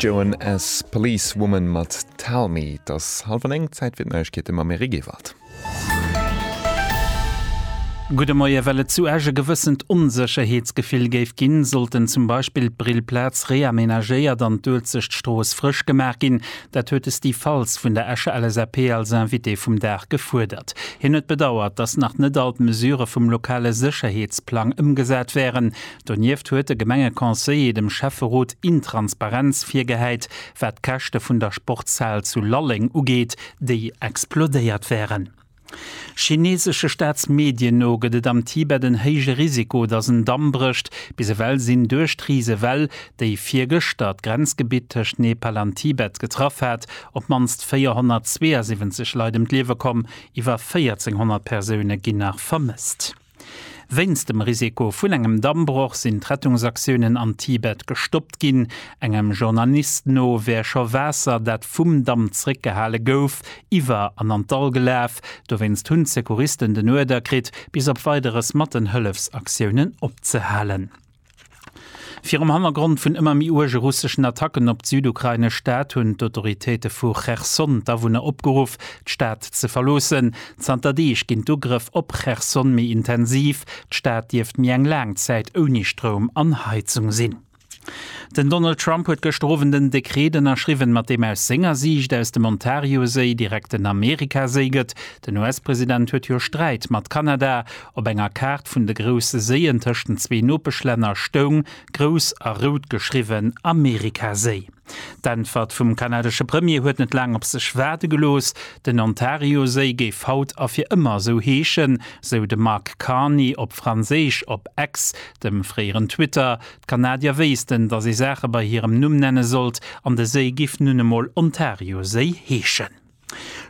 Joan S. Policewoman mat Tell Me. Et ass hallef an eng, Zäit fir d'Neiegkeete mam Eric Ewald. Gudde Moie, Well et zu Esch e gewëssent Onsécherheetsgefill géif ginn, sollten zum Beispill d'Brillplaz reamenagéiert an d'Uelzechtstrooss frësch gemaach ginn. Dat huet de Steve Faltz vun der Escher LSAP als Invité vum Dag gefuerdert. Hien huet bedauert, datt nach net all d'Mesure vum lokale Sécherheetsplang ëmgesat wären. Donieft huet de Gemengeconseiller dem Schäfferot Intransparenz virgehäit, wat d'Käschte vun der Sportshal zu Lalleng ugeet, déi explodéiert wären. Chineesesche Staatsmedien no gëtt et am Tibet en héije Risiko, datt en Damm brécht. Bis ewell sinn duerch d'Risewell, déi virgëschter d'Grenzgebitt tëscht Nepal an Tibet getraff hat, op d'mannst 472 Leit ëm d'Liewe komm. Iwwer 1.400 Persoune ginn nach vermësst. Wéinst dem Risiko vun engem Dammbroch sinn d'Rettungsaktiounen am Tibet gestoppt ginn. Engem Journalist no wär scho Waasser, dat vum Damm zeréckgehale gouf, iwwer an an d'Dall gelaf. Dowéinst hunn d'Secouristen den Uerder kritt, bis op Weideres mat den Hëllefsaktiounen opzehalen. Virum Hannergrond vun ëmmer méi uerge russeschen Attacken op d'südukrainesch Stad hunn d'Autoritéite vu Cherson d'Awunner opgeruff, d'Stad ze verloossen. Zanter Deeg ginn d'Ugrëff op Cherson méi intensiv. D'Stad dierft méi eng laang Zäit ouni Stroum an Heizung sinn. Den Donald Trump huet gëschter Owend en Dekreet ënnerschriwwen, mat deem aus senger Siicht aus dem Ontarioséi direkt den Amerikaséi gëtt. Den US-President huet jo Sträit mat Kanada, Op enger Kaart vun de grousse Séien tëscht den zwee Nopeschlänner stoung grouss a rout geschriwwen Amerikaséi. D'Äntwert vum kanadesche Premier huet net laang op sech waarde gelooss, Den Ontarioséi géif haut a fir ëmmer esou heeschen, sou de Mark Carney op Franséisch op X, dem fréieren Twitter. D'Kanadier wéissten, datt ee Saache bei hirem Numm nenne sollt, an de Séi giff nun emol Ontarioséi heeschen.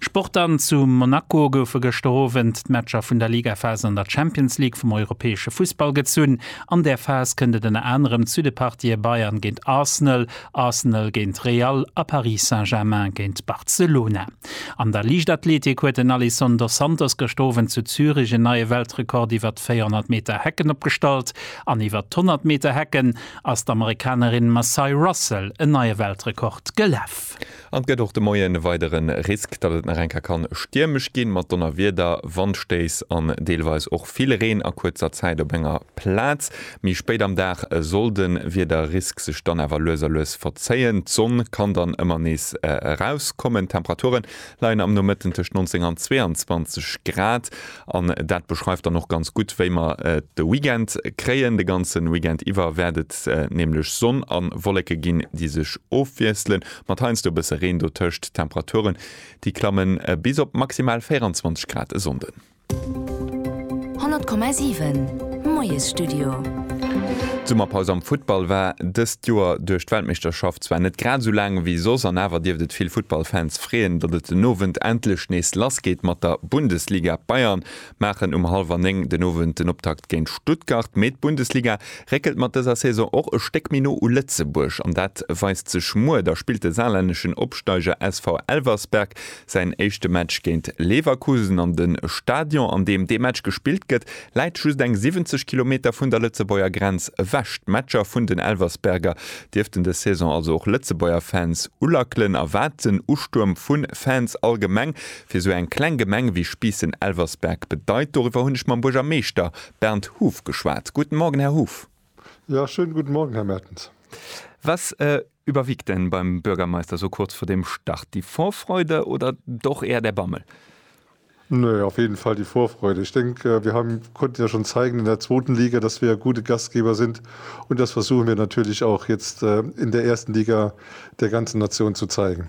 Sport dann, Zu Monaco goufe gëschter Owend d'Matcher vun der Ligaphas an der Champions League vum europäesche Fussball gezunn. An där Phas kënnt et ënner anerem zu de Partië Bayern géint Arsenal, Arsenal géint Real a Paris Saint-Germain géint Barcelona. An der Liichtathletik huet den Alison dos Santos gëscht Owend zu Zürich en neie Weltrekord iwwert d'Véierhonnert Meter Hecken opgestallt an iwwert d'Honnert Meter Hecken ass d'Amerikanerin Massai Russell en neie Weltrekord gelaf. An et gëtt och de Moien e weidere Risk, datt et nach eng Kéier kann stiermesch ginn, mat Donnerwieder, Wandstéiss an deelweis och vill Reen a kuerzer Zäit op enger Plaz. Méi spéit am Dag soll de Wiederrisk sech dann awer lues a lues verzéien, d'Sonn kann dann ëmmer nees erauskommen. D'Temperature leien am Nomëtten tëscht 19 an 22 Grad an dat beschreift dann och ganz gutt, wéi mer de Weekend kréien. De ganze Weekend iwwer wäert et nämlech Sonn a Wolleke ginn, déi sech ofwiesselen. Mat heiansdo e bësse Reen dotëscht. D'Temperature déi klamme bis op maximal 24 Grad e Sonnden. 100,7 Moiesstudio. D'Summerpaus am Futtball war dëst Joer duerch d'Weltmeeschterschaft zwar net grad esou laang ewéi soss an awer dierft et vill Futtballfans freeën, datt et den Owend endlech nees lassgeet mat der Bundesliga. D'Bayern maachen um hallwer 9 den Owend den Optakt géint Stuttgart. Mee d'Bundesliga réckelt mat dëser Saison och e Stéck méi no u Lëtzebuerg an dat weist sech muer. Da spillt de saarlänneschen Opsteiger SV Elversberg säin éischte Match géint Leverkusen an de Stadion, an deem dee Match gespillt gëtt, läit just eng 70 Kilometer vun der Lëtzebuerger Grenz ewech. D'Matcher vun den Elversberger dierften des Saison also och Lëtzebuerger Fans ulackelen. A wat den Ustuerm vu Fans allgemeng Fir sou eng kleng Gemeng wéi Spiissen-Elversberg bedeit, doriwwer hunn ech mam Buergermeeschter Bernd Huff geschwat. Guten Morgen, Här Huff. Ja, schönen guten Morgen, Här Mertens. Was überwiegt denn beim Bürgermeister so kurz vor dem Start, die Vorfreude oder doch eher der Bammel? Nee, auf jeden Fall die Vorfreude. Ich denke, wir haben, konnten ja schon zeigen in der zweiten Liga, dass wir gute Gastgeber sind. Und das versuchen wir natürlich auch jetzt äh, in der ersten Liga der ganzen Nation zu zeigen.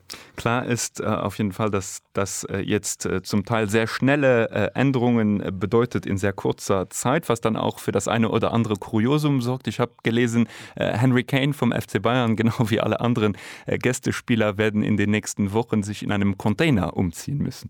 Klar ist auf jeden Fall, dass das jetzt zum Teil sehr schnelle Änderungen bedeutet in sehr kurzer Zeit, was dann auch für das eine oder andere Kuriosum sorgt. Ich habe gelesen, Henry Kane vom FC Bayern, genau wie alle anderen Gästespieler, werden in den nächsten Wochen sich in einem Container umziehen müssen.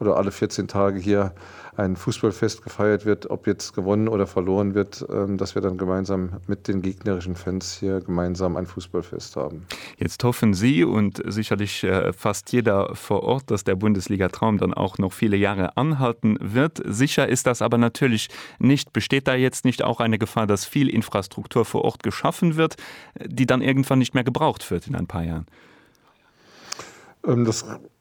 oder alle 14 Tage hier ein Fußballfest gefeiert wird, ob jetzt gewonnen oder verloren wird, dass wir dann gemeinsam mit den gegnerischen Fans hier gemeinsam ein Fußballfest haben. Jetzt hoffen Sie und sicherlich fast jeder vor Ort, dass der Bundesliga-Traum dann auch noch viele Jahre anhalten wird. Sicher ist das aber natürlich nicht. Besteht da jetzt nicht auch eine Gefahr, dass viel Infrastruktur vor Ort geschaffen wird, die dann irgendwann nicht mehr gebraucht wird in ein paar Jahren? Das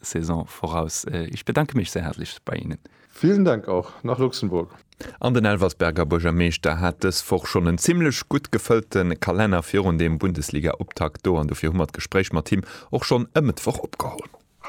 Saison voraus. Ech bedanke mech sehr herzlich bei Ihnen. Vielen Dank auch nach Luxemburg. An den Elversberger Buergermeeschter hat dës Woch schonn en zimlech gutt gefëllte Kalenner virun dem Bundesliga-Optakt do an dofir hu mer d'Gespréich mat him och schonn e Mëttwoch opgeholl.